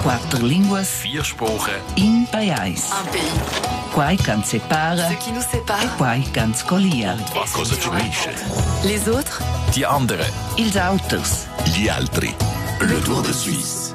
Quatter linguas, vier spurer, in pajais. Un pays. Quai ch'ans separa, ce qui nous sépare, quai ch'ans collia. Ma cosa ci unisce? Les autres, Die andere, ils auters. Gli altri, le Tour de Suisse.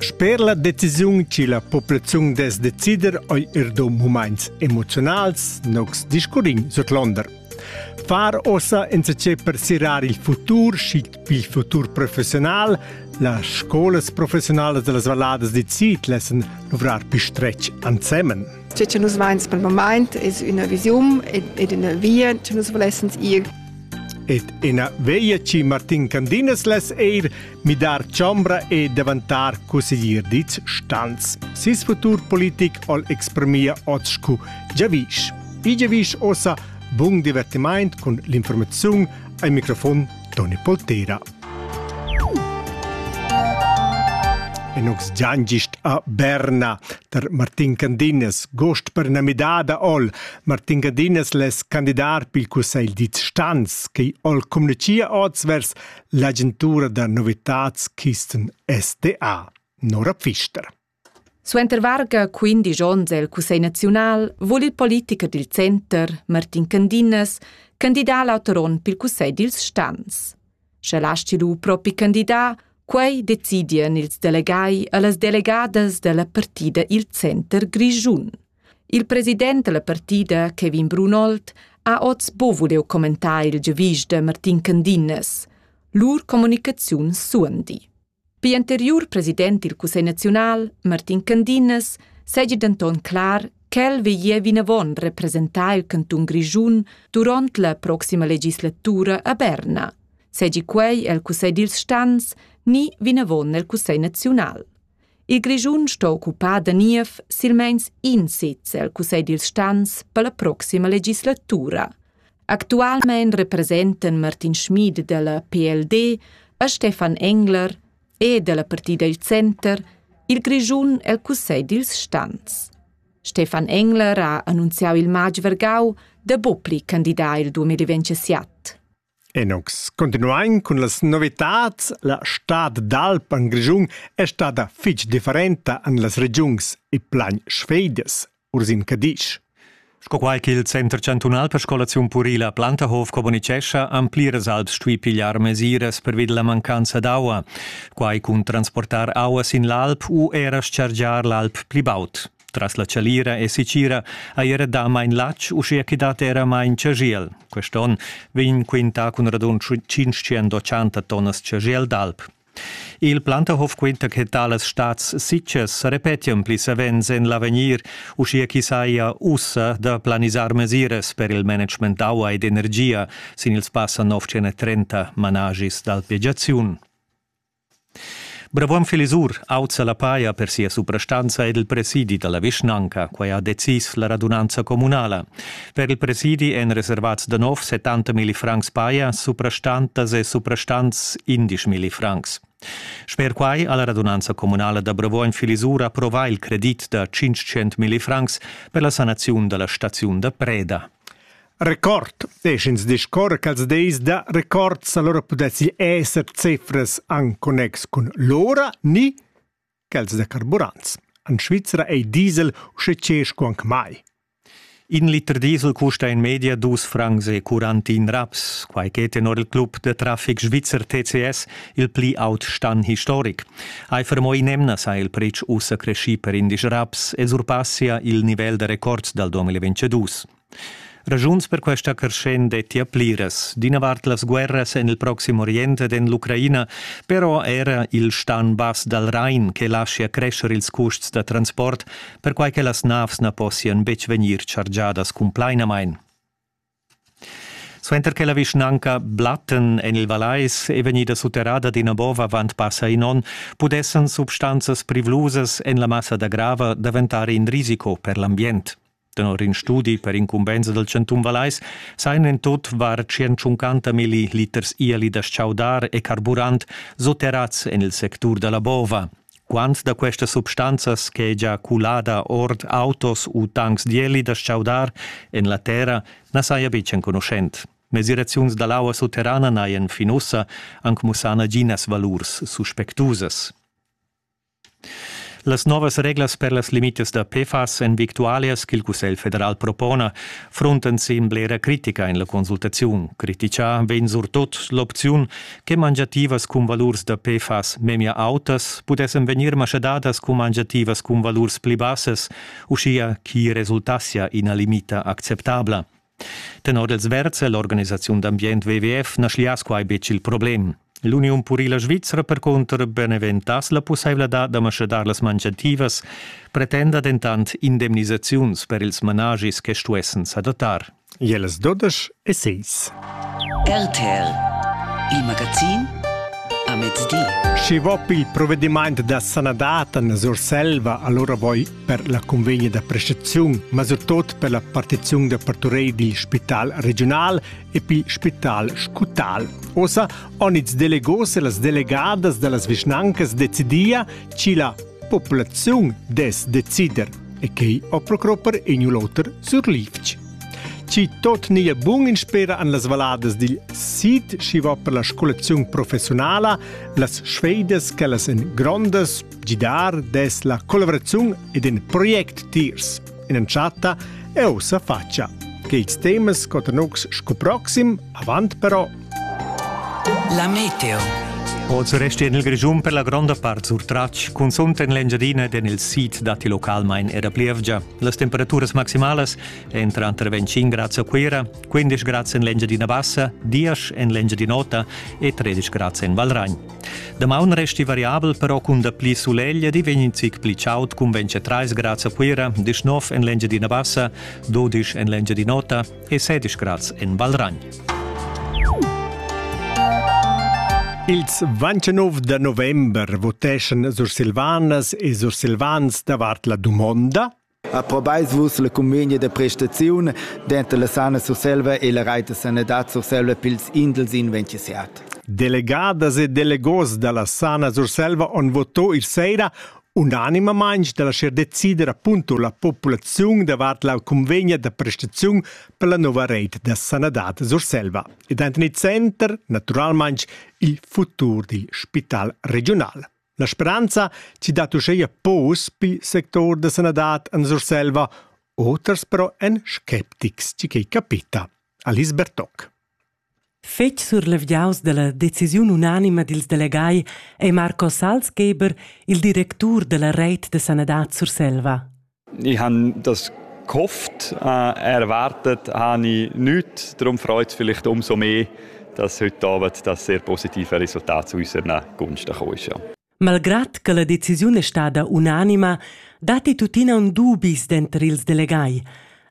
Sper la decisiun che la populaziun dess decider ei er do moments emoziunals nogs discurrin sutlonder. Far ossa enzatgé per sirar il futur, schic il futur professional, las scolas professionalas de las valladas di Zit lassen luvrar pi stretg ansemen. Tge che nus meins per moment es una vision ed una via che nus volessens ir. Ed ina veglia ci Martin Candinas les eir midar chombra e davantar cusseglier dits stans. Sis futur politic ol exprimia oz cu Giavisch. I Giavisch ossa bun divertiment cun l'informaziun al microfon Toni Poltera. E nux giangist a Berna tar Martin Candinas, gost per na midada ol. Martin Candinas les candidar pil cussegl dits stans, che ol communicia oz vers L'agentura da novitads Kisten SDA, Nora Pfister. Suenter varga 15 onns el Cussegl naziunal vul il politicher dil center, Martin Candinas, candidar l'auter onn pil Cussegl dils stans. Sche lasti lu propi candidar, quei decidien ils delegai e las delegadas dalla partida il center grischun. Il president dalla partida, Kevin Brunold, ha oz bovudeu commentà il giavisch da Martin Candinnes. Lur communicaziun suondi. Pii anteriur president dil Cussegl naziunal, Martin Candinnes, segi denton clar ch'el veglia vinavon representar il cantun Grischun duront la proxima legislatura a Berna, segi quei el Cussegl dils stans ni vinavon nel Cussegl naziunal. Il Grischun sto occupar da niev silmeins in sez el cussegl dils stans per la proxima legislatura. Actualmein representan Martin Schmid dalla PLD e Stefan Engler e dalla partida il Center il Grischun el cussegl dils stans. Stefan Engler ha annunziau il matg vergau da bopli candidar il 2027. Enox. Continuain cun las novitads. La stad d'alp en Grischun è stada fitg differenta en las regiuns e plan sfedas. Ursin Cadisch. Sco quai ch'il Center chantunal per scolaziun purila Plantahof communitgescha, han pliras alps stuì pigliar mesiras pervi da la mancanza d'aua. Quai cun transportar aua sin l'alp u era chargiar l'alp pli baud. Tras la chalira e sicira hai era dà main latg, uschia ch'i dat era main chagiel. Quest onn vegn quintà cun radund 580 tonnas chagiel d'alp. Il Plantahof quinta che talas stads sitgas repetian pli savens en l'avegnir, uschia ch'i saja ussa da planisar mesiras per il management d'aua ed energia sin ils passa 930 managis d'alpegiaziun. Bravuogn Filisur auzza la paja per sia suprastanza ed il presidi da la vischnanca. Quai ha decis la radunanza communala. Per il presidi èn reservats da nov 70 milli francs paja, suprastantas e suprastants 11 milli francs. Sper quai ha la radunanza communala da Bravuogn Filisur approvà il credit da 500 milli francs per la sanaziun da la staziun da preda. Record desch'ins discorrer quels dis da records, allora pudessi esser cifras en connex cun l'ora ni quels da carburants. En Svizra ei diesel usche cesco anc mai. In liter diesel custa in media dus francs e quarantin raps, quai che tenor il club de traffic svizzer TCS il pli aut stan historic. Eifer mo in emna sa il pretsch ussa cresci per indisch raps e surpassia il nivel da records dal 2022. Ragiuns per questa creschent dettia pliras. D'ina vart las guerras en il Proxim Orient ed en l'Ucraina, però era il stan bass dal Rain che laschia crescer ils custs da transport, perquai che las navs na possian betg vegnir chargiadas cumplainamain. Suenter che la vischnanca Blatten en il Vallais è vegnida sutterrada d'ina bova avant passa in onn, pudessan substanzas privlusas en la massa da grava daventar in risico per l'ambient. Tenor in studi per incumbensa dal chantun Vallais sajan en tut var 150 milli liters ieli da chaudar e carburant sotterrads en il sectur da la bova. Quant da questas substanzas ch'è già culada ord autos u tancs d'ieli da chaudar en la terra na saja betg enconuschent. Mesiraziuns da l'aua sutterrana n'hajan fin ussa anc mussà naginas valurs suspectusas. Las novas reglas per las limitas da PFAS èn victualias ch'il Cussegl federal propona, fruntan sin blera critica en la consultaziun. Critichà vegn surtut l'opziun che mangiativas cun valurs da PFAS memia autas pudessan vegnir maschadadas cun mangiativas cun valurs pli bassas, uschia ch'i resultassia ina limita acceptabla. Tenor els versa l'organisaziun d'ambient WWF na schlias quai betg il problem. L'Uniun purila svizra percunter beneventass la pussaivladad da maschadar las mangiativas, pretenda dentant indemnisaziuns per ils managis che stuessen s'adattar. Jeles Dodesch e seis. RTL, il magazin a mezdi. Schi vop il provvediment da sanadad en Surselva, allora voi per la convegna da prestaziun, ma surtot per la partiziun da parturei dil spital regional e pil spital scutal. Osa on ils delegos e las delegadas dallas vischnancas decidia chi la populaziun des decider e quei o procropper in un l'oter sur livch. Ci tot nia bun in spera an las valadas dil sid, schi va per la scolaziun professionala, las sfeidas che las en grondas Gidar des la collaboraziun ed in project tiers in entschatta eu sa faccia che ils temas cotanux scu proxim avant però La meteo Oz resti en il Grischun per la gronda part surtratg, cunzunt en l'Engiadina ed en il sid datti localmain era plievgia. Las temperaturas maximalas èn tranter 25 grads a Cuira, 15 grads en l'Engiadina Bassa, 10 en l'Engiadin'Ota e 13 grads en Valragn. Damaun resti variabel però cun dapli sulegl ed i vegn in zic pli chaud cun 23 grads a Cuira, 19 en l'Engiadina Bassa, 12 en l'Engiadin'Ota e 16 grads en Valragn. Ils 29 da november voteschan Sursilvanas e Sursilvans davart la dumonda Approbais vus la cumegna da prestaziun denter la Sana Surselva e la Reit da sanadad Surselva pils indels in 27? Delegadas e delegos dalla Sana Surselva han votò il sera unanimamein dalla scher decider appunto la populaziun davart la cunvegna da prestaziun per la nova reit da sanadad Surselva ed han tener center naturalmein il futur dil spital regional. La speranza chi dat uscheia pos pil sector da sanadad en Surselva, oters però en sceptics chi quei capita. Alice Bertoc. Fetg surlevgiaus dalla decisiun unanima dils delegai è Marco Salzgeber, il directur della Reit de Sanadad Surselva. Ich habe das gehofft, äh, erwartet habe ich nichts. Darum freut es vielleicht umso mehr, dass heute Abend das sehr positive Resultat zu unserer Gunst gekommen ist. Ja. Malgrad che la decisiun è stata unanima, datti tuttina un dubis denter ils delegai.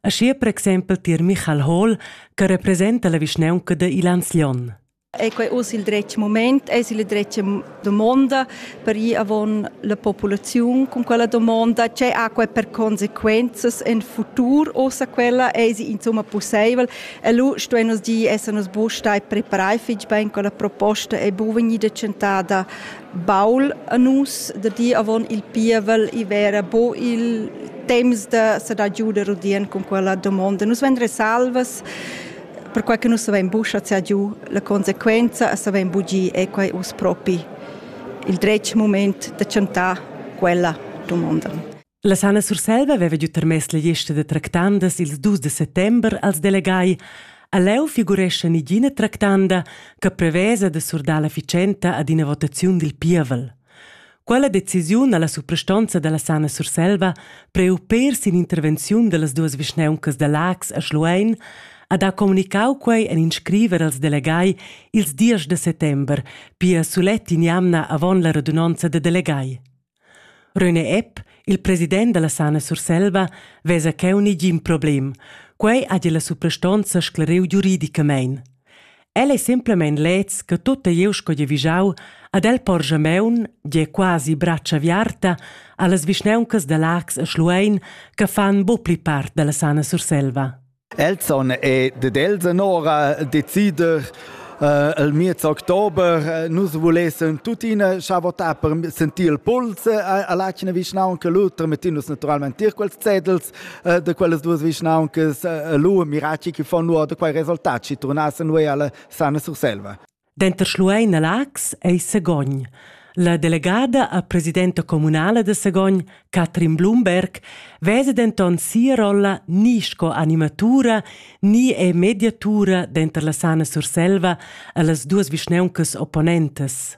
Aschia per exempel tier Michael Hall, che representa la vischnaunca de Ilanzlion. È quei oz il dretg moment? Eis il dretg domonda per ir avon la populaziun con quella domonda? Tgei ha quei per consequenzas en futur ossa quella? Eis insomma possibel? E lu stuein nus dir esser nus buc stai preparai fitg bein con la proposta ei bu vegnida tschentada baul a nus da dir avon il pievel i vera bo il temps da sa da giuder udien con quella domonda. Nus vendre salvas perquai che nus savein buca schar giu la consequenza e savein bugir è quai uss propi il dretg moment da chantar quella dumonda. La Sana Surselva aveva giu tarmess la lista da tractandas ils dus de settember als delegai. A leu figurescha nigina tractanda che prevesa de surdar la ficenta ad ina votaziun dil pievel. Quella decisiun ha la suprastonza dalla Sana Surselva priu per sin intervenziun dallas duas vischneuncas da Laax a Schluein ha da communicau quei en in scriver als delegai ils diesch de settember, pia sulet in'jamna avon la radunonza da delegai. René Epp, il president dalla Sana Surselva, vesa cheu negin problem. Quei ha la suprastonza sclariu giuridicamein. El ei semplamein leds che tutta glieud sco gie vigiau ad el porscha meun, gie quasi bratscha aviarta, allas vischnauncas da Lax e Schluein che fan bu pli part dalla sana Surselva. Elzon è ded Elsen ora decider Uh, il miez october uh, nus volessen tuttina scha votar per sentir il puls uh, all'acina vischnaunca Luther mettinus naturalmente tier quels zetels eh, da quellas duas vischnauncas eh, lu miracci che fanno da quei resultat ci turnassen noi alla sana Surselva. Denter Schluein e Lax ei Segogn. La delegada a presidenta comunala de Segogn, Katrin Blumberg, vese denton sia rolla ni sco animatura ni è mediatura denter la Sana Surselva e las duas vischnauncas opponentes.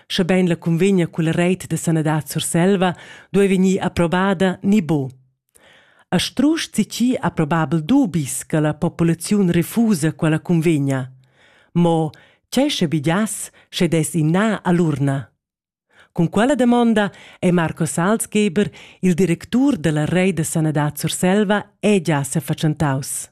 Schebein la cunvegna culla reit da sanadad Surselva duei vegnir approvada ni bo. A strusch zichi approbabel dubis che la populaziun refusa quella cunvegna. Mo tgei sche bidias, sche des inna all'urna? Cun quella domanda è Marco Salzgeber, il directur della Rei da Sanadad Surselva, è già sefatschentaus.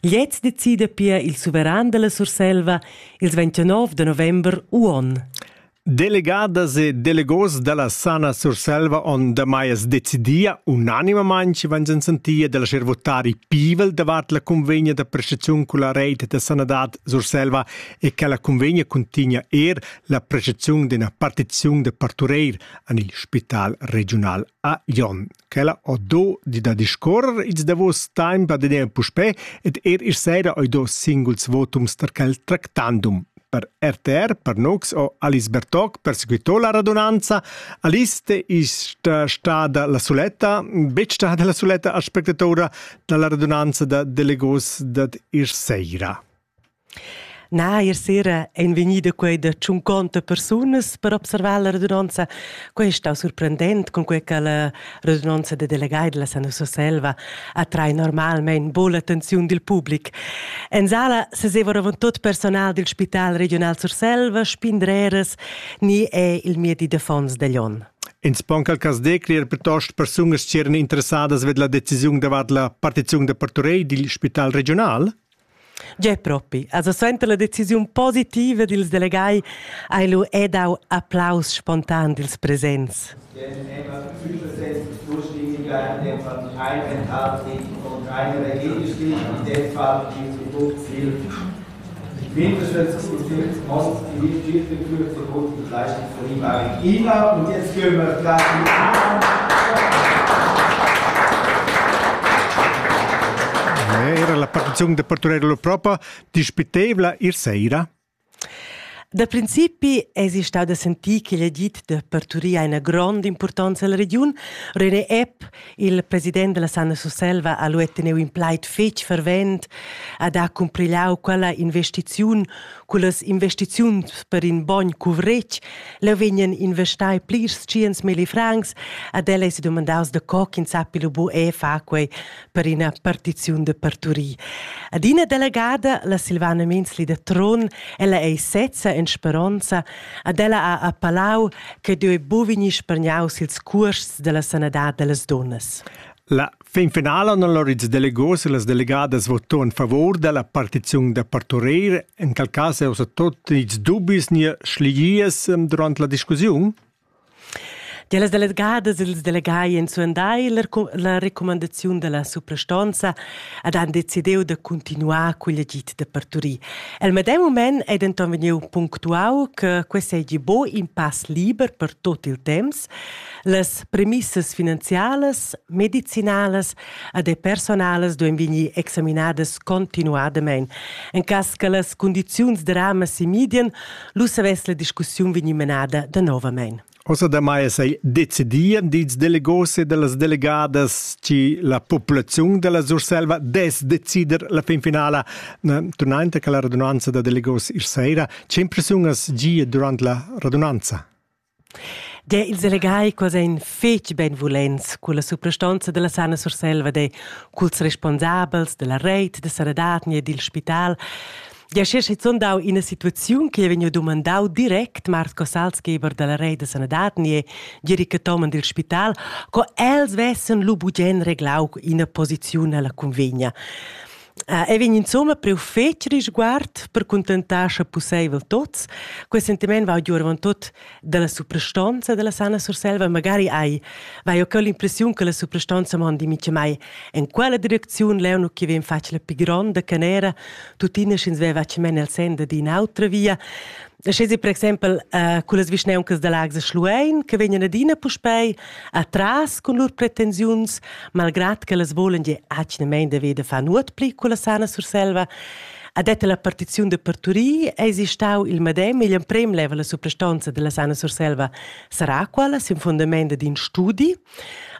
Gliez decida pia il suveran dalla Surselva ils 29 de november uon. Delegadas e delegos dalla Sana Surselva on damai es decidia unanimamain ci van sentia della ser votari pivel davat la convegna da prestaziun culla reit da sanadad Surselva e che la convegna contigna er la prestaziun d'una partizion de partureir an il spital regional a Jon. ch'ella ho do di da discuorrer ils davos temps ad eir puspè ed eir isch saira ho do singuls votums tar quel tractandum. Per RTR, per Nox o Alice Bertoc persequitò la radunanza. Alice ist stada la suletta, betg stada la suletta aspectatora da la radunanza da delegos dad isch saira. Nair sera ein vegnida quei da tschunconta persunas per observar la radunonza. Quei stau surprendent, cunquei che la radunonza da delegai della Sana Surselva attrai normalmein buca l'attenziun dil public. En sala seseva avontot personal dil Spital Regional Surselva, spindreras ni è il miedi d'affons degl onn. Ins pon cal cas decler plitost persunas ch'eran interessadas ved la decisiun davart la partiziun da parturei dil Spital Regional? Gie propi, also suenter la decisiun positiva dils delegai hai lu e dau applaus spontan dils presents. Ich bin unterstütze und Monster, die nicht viel für Zukunft zu leisten. Ina und jetzt gehen wir gleich Era la partiziun de Parturello propria dispitevla ir sera? Da principi es stau da sentir che l'edit de parturia ha una grande importanza alla regiun. René Epp Il president della Sanna Surselva ha lu teniu in plaid fetg fervent ad ha cumprigliau quella investiziun cullas investiziuns per in bogn cuvretg. Leu vegnan investai plirs tschiens milli francs ad el ei sedomandaus da co ch'in sappi lu bu e fa quei per ina partiziun de parturir. Ad ina delegada, la Silvana Minzli da Tron, ella ei sezza en speronza Ad ella ha appalau che deu bu vegnir spargnaus ils cuosts della sanadad dellas dunnas. La fin finala han allora ils delegos e las delegadas voto in favor della partiziun da parturer, in quel cas è also tot nichts dubis ni schligies durant la discussiun? Tier las delegadas ed ils delegai ein suandai la recu- la recumandaziun dalla suprastonza ed han decidiu da cuntinuar cugl agid da parturir. El medem mument ei denton vegniu punctuau che quei seigi buca in pass liber per tot il temps. Las premissas finanzialas, medicinalas ed e personalas duein vegnir examinadas continuadamein. En cass che las cundiziuns dramas semidien, Lu savess la discussiun vegnir menada danovamein. Ossa damai sei decidia dils delegos e dallas delegadas chi la populaziun della Surselva des decider la fin finala. Tunante che la radunanza da delegos ir sera, che impressiunas gia durant la radunanza? Der ils elegai quels ein fetg benvulents culla suprastonza dalla Sana Surselva de culs responsabels dalla reit da sanadad ni dil spital. Gia sche schizun dau ina situaziun che vegniu dumandau direct Marco Salzgeber dalla reit da sanadad ni Gerika Toman dil spital, co els vessen lu bugen reglau ina posiziun alla cunvegna. ei vegn insomma priu fetg risguard per contentar sche pusseivel tots. Quei sentiment va giu avon tot dalla suprastonza della Sanna Surselva, magari hai vai ho l'impressiun che la suprastonza mondi mica mai en quella direcziun, leu nu che vegn fatg la pi gronda canera, tuttina sch'ins veva che men el senda d'in autra via. Schesi per exempel uh, con las vischneuncas da Lags e Schluein che vegnan adina puspei atras con lur pretensiuns, malgrad che las volen je atgnamein de veda fa nuot pli con la sana Surselva, ha detto la partiziun de Parturí eisi stau il medem igl emprem level la suprastonza della sana Surselva sarà quala sin fundament d'in studi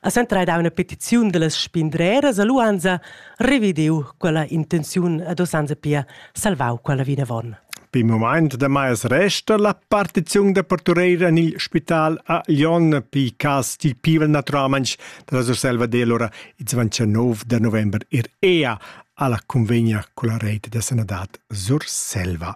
A Centra ha dà una petiziun da las spindreras a Luanza revidiu quella intenziun ad Osanza pia salvau quella vinavon. Per il moment damai resta la partiziun da partureira en il spital a Lyon per cas dil pivel naturalmente dalla Surselva dell'ora il 29 de november ir EA alla convegna con la rete de sanadad Surselva.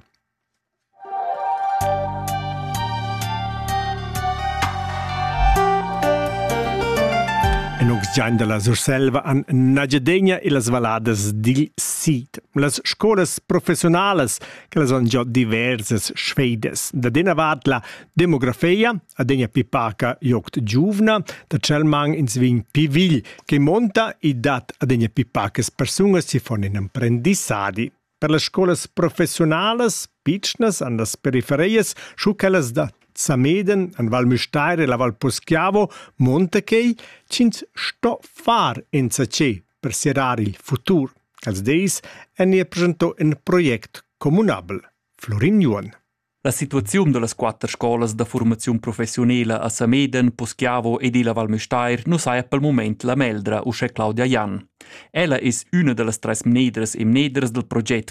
En Uxign dalla Surselva han Nagiadegna e las valladas dil sid. Las scolas professionalas che las han già diversas sfeidas. Da dena vart la demografia, adegna pi paca joct giuvna, da Chelmang ins vin pi vigl, che monta e dat adegna pi pacas persunas si fon in emprendissadi. Per las scolas professiunalas pitschnas han las periferias schu quellas da Zameden an Val Müstair e la Val Poschiavo monta quei ch'ins sto far enzatgé per serrar il futur. Els dis en ir presento in project communabel. Florin Juon. La situaziun dallas quatter scolas da formaziun professiunala a Sameden, Poschiavo ed illa Val Müstair nu saja pel mumaint la meldra uschè Claudia Jan. Ella es üna da las tres mnedras e mneders dal proget